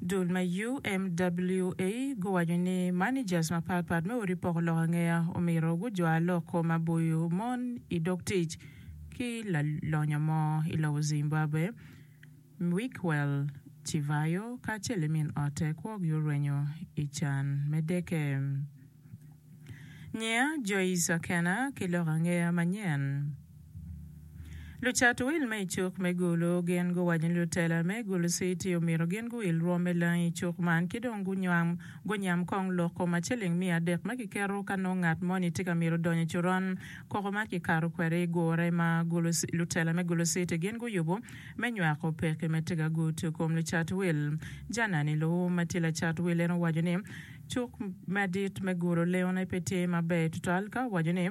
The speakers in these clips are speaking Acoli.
Dul ma UMWA guwaco ni managers mapat pat me odi poko lok angeya omyero gujwar lok kom ma boyo mon i dog tic ki lalonyo mo i lobo Zimbabwe, Mickwell Chivayo kacel ki min otte kwogi orwenyo i can me deke. Nyiya Joyce Akena ki lok angeya manyen. Lucat wil me i cuk me gulu gin guwaco ni lutela me gulu citi omyero gin guwil rwom me langi i cuk man ki dong gunyam kong lok kom ma ciling miya adek ma kiketo ka nongo ngat moni tye ka myero odonyo i coron koko ma kikato kwede i gure ma lutela me gulu citi gin guyubo me nywako peke me tiga gutu kom lucat wil. Janani Loum ma tye lacat wil en owaco ni cuk madit me gulu lengone pe tye maber tutwal ka owaco ni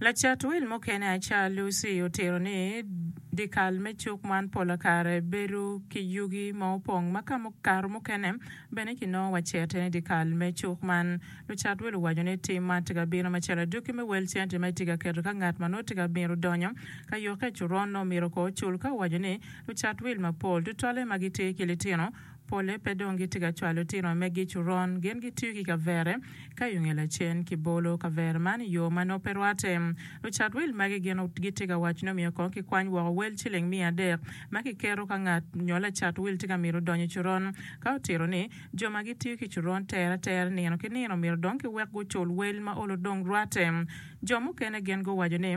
Lacat wil mukene Acar Lucy otito ni, Dyekal me cuk man pola kare bedo ki yugi ma opong ma kare mukene bene kinongo wacete ni dyekal me cuk man. Lucat wil owaco ni tim man tye ka bino macalo adwoki me wel cente ma itye ka keto ka ngat ma nongo tye ka mito donyo ka yokke. Coron nongo myero kong ocul ka owaco ni lucat wil mapol tutwalle ma gitye ki litino Pole pe dong gitye ka cwalo tino megi i coron. Gin gitiyo ki kavere ka yunge lacen ki bolo kavere man i yo ma nongo pe rwatte. Lucat wil magi gin gitye ka waco ni omyero kong kikwany woko wel ciling miya adek ma kiketo ka ngat nyo lacat wil tye ka mito donyo i coron. Ka otito ni, jo ma gitiyo ki coron tere atera nino ki nino myero dong kiwek gucul wel ma olo dong rwatte. Jo mukene gin guwaco ni,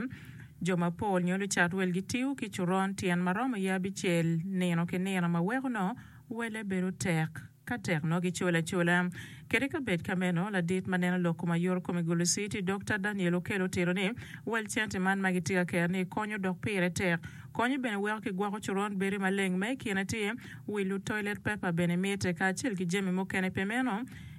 Jo mapol nyo lucat wel gitiyo ki coron tyen ma romo ye abicel nino ki nino ma weko nongo welle bedo tek. Ka tek nongo gicolo acola. Kede ka bed ka meno, ladit ma neno lok kom ayoro kom i Gulu City, Dokta Daniel Okello otito ni, Wel cente man ma gitye ka ker-ni konyo dok pire tek. Konyo bene weko kigwoko coron bedo maleng. Ma i kine tye, wilo, toilet paper bene mitte, kacel ki jami mukene. Pi meno,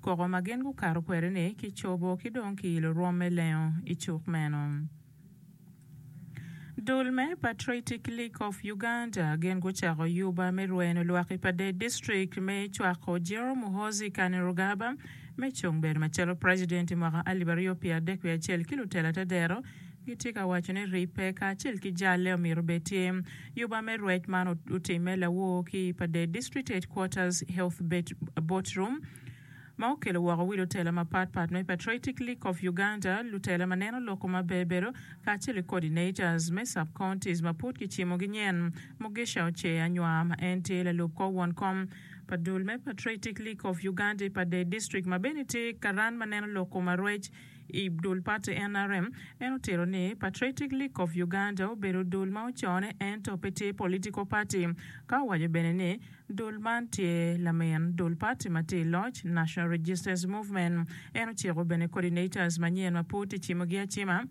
Koko ma gin gukato kwede-ni kicobo ki dong kiilo rwom me lengo i cuk meno. Dul me Patriotic League of Uganda gin gucako yuba me rweno lwak i Padee District me cwako General Muhoozi Kainerugaba me cung bedo macalo President i mwaka alip aryo pye adek wiye acel ki lutela te dero gitye ka waco ni ribbe kacel ki jalle omyero obed tye Yuba me rwec man otimme lawor ki i Padee District Headquarters Health Boat Room, ma okelo woko wilo tela mapat pat me Patriotic League of Uganda, lutela ma neno loko ma bebedo, kacel ki coordinators me sub-counties ma pud kicimogi nyen. Mugisha Ochee Anywar ma en tye lalub kor won kom pa dul me Patriotic League of Uganda i Padee District ma bene tye karan ma neno loko ma rwec, I dul pati nrm, en otito ni Patriotic League of Uganda obedo dul ma ocone ento pe tye political party, ka owaco bene ni dul man tye lamin dul pati ma tye i loc, National Registers Movement. En ociko bene coordinators manyen ma pud kicimogi acima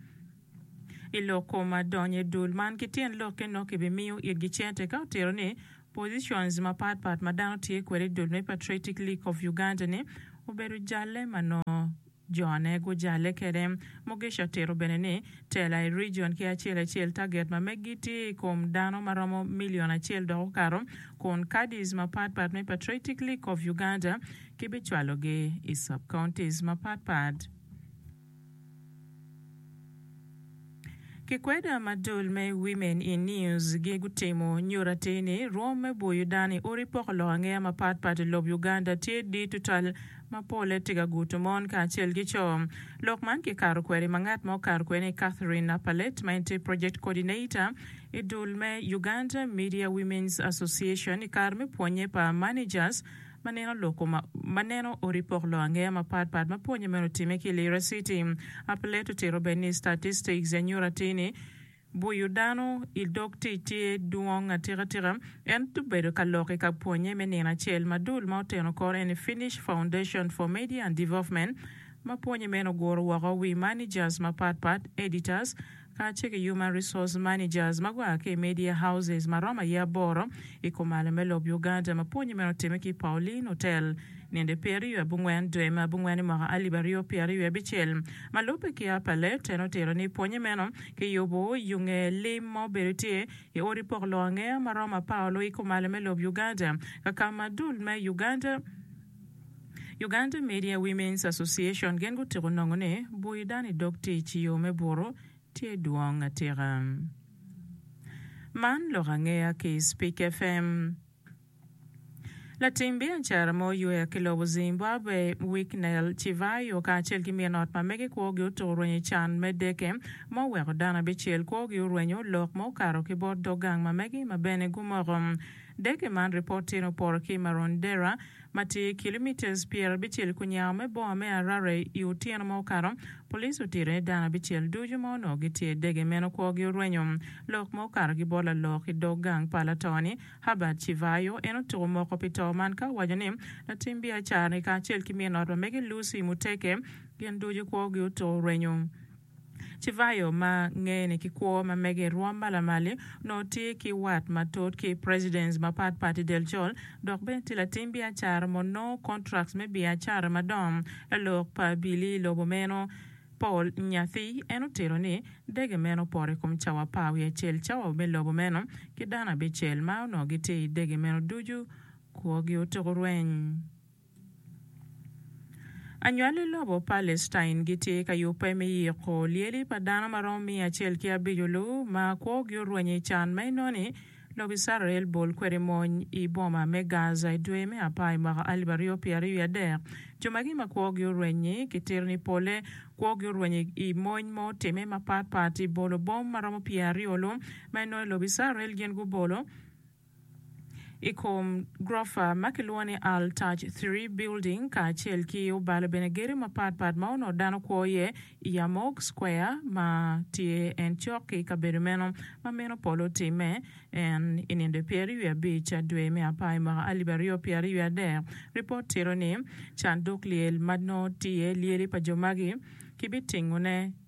i lok kom donyo i dul man ki tyen lokke nongo kibimiyo itgi cente, ka otito ni positions mapat pat ma dano tye kwede i dul me Patriotic League of Uganda-ni obedo jalle ma nongo. Jone gujale kede. Mugisha tito bene ni, Tela i rijion ki acel acel taget ma meggi tye i kom dano ma romo milion acel dok okato, kun caddies mapat pat me Patriotic League of Uganda kibicwalogi i sub-counties mapat pat. Kikweda madul me Women in News gi gutimo nyuto atir ni rwom me bwo Yudan i odi poko lok angeya mapat pat i lob Uganda tye dir tutal ma pole tye ka guto mon kacel ki co. Lok man kikato kwede ma ngat ma okato kwede ni Catherine Napalette ma en tye Project Coordinator i dul me Uganda Media Women's Association i kare me pwonye pa Managers ma neno loko ma ma neno odi pok lok angeya mapat pat ma pwonye meno otime ki Lira City. Aplet otito bene ni statistics ya nyuto atir ni buyo dano i dog tic tye dwong atika tika. En obedo ka lok i ka pwonye me nino acel ma dul ma oteno kore eni Finnish Foundation for Media and Development ma pwonye meno oguro woko wi managers mapat pat, editors, kacel ki Human Resource Managers ma gua ki i Media Houses ma romo aye aboro i kumalo me lobo Uganda ma pwonye meno otimme ki i Pauline Hotel ninde pyeraryo abongwen dwe me abongwen i mwaka alip aryo pyeraryo abicel. Ma lubbe ki Upper Left en otito ni pwonye meno kiyubo yo nge lim ma obedo tye i odi pok loo angeya ma romo apar oloo i kumalo me lobo Uganda kakama dul me Uganda Uganda Media Women's Association gin gutiko nongo ni bwoyo dano i dog tic i yo me buto tye dwong atika. Man lok angeya ki i Spik FM. Latim biacara mo yweyo ki lobo Zimbabwe, Wicknell Chivayo kacel ki min ot ma mege kwogi otuko rwenyo i can me deke ma oweko dano abicel kwogi orwenyo lok ma okato ki bot dog gang ma mege ma bene gumoko Deke man ripot tyen oporo ki Marondera ma tye kilomitas pyer abicel ku nyao me boma me Harare i otyeno ma okato. Police otite dano abicel ducu ma onongo gitye i deke meno kwogi orwenyo. Lok ma okato ki bot lalok i dog gang pa lato ni, Herbert Chivayo, en otuko moko pi to man ka owaco ni latim biacara ni kacel ki min ot ma mege Lucy Muteke gin ducu kwogi otuko orwenyo. Cevallo ma ngene ki kwo ma mege i rwom ma lamal-li, onongo tye ki wat matut ki presidents mapat pat i del col dok bene tye latim biacara ma onongo contracts me biacara madongo. Lalok pa abili i lobo meno, Paul Nyathi, en otito ni, Dege meno opoto i kom cawa apar wiye acel cawa me lobo meno ki dano abicel ma onongo gitye i dege meno ducu kwogi otuko rweny. Anywal i lobo Palestine gitye ka yubbe me yiko lyeli pa dano ma romo miya acel ki abico-lu ma kwogi orwenyo i can ma inoni lobo Icrael bol kwede mony i boma me Gaza i dwe me apar i mwaka alip aryo pyera aryo wiye adek. Jo magi ma kwogi orweny-nyi kitito ni polle kwogi orwenyo i mony ma otimme mapatpat i bolo bom ma romo pyer aryo-lu ma inoni lobo Icrael gin gubolo i kom gurofa ma kilwongo ni Al Taj Three Building kacel ki obalo bene gedo mapat pat ma onongo dano kwo iye i Yarmouk Square ma tye en cok ki kabedo meno ma meno polo otimme. En i nindo i pyeraryo wiye abic a dwe me apar i mwaka alip aryo pyeraryo wiye adek, ripot tito ni canduk lyel ma nongo tye iye lyeli pa jo magi kibitingone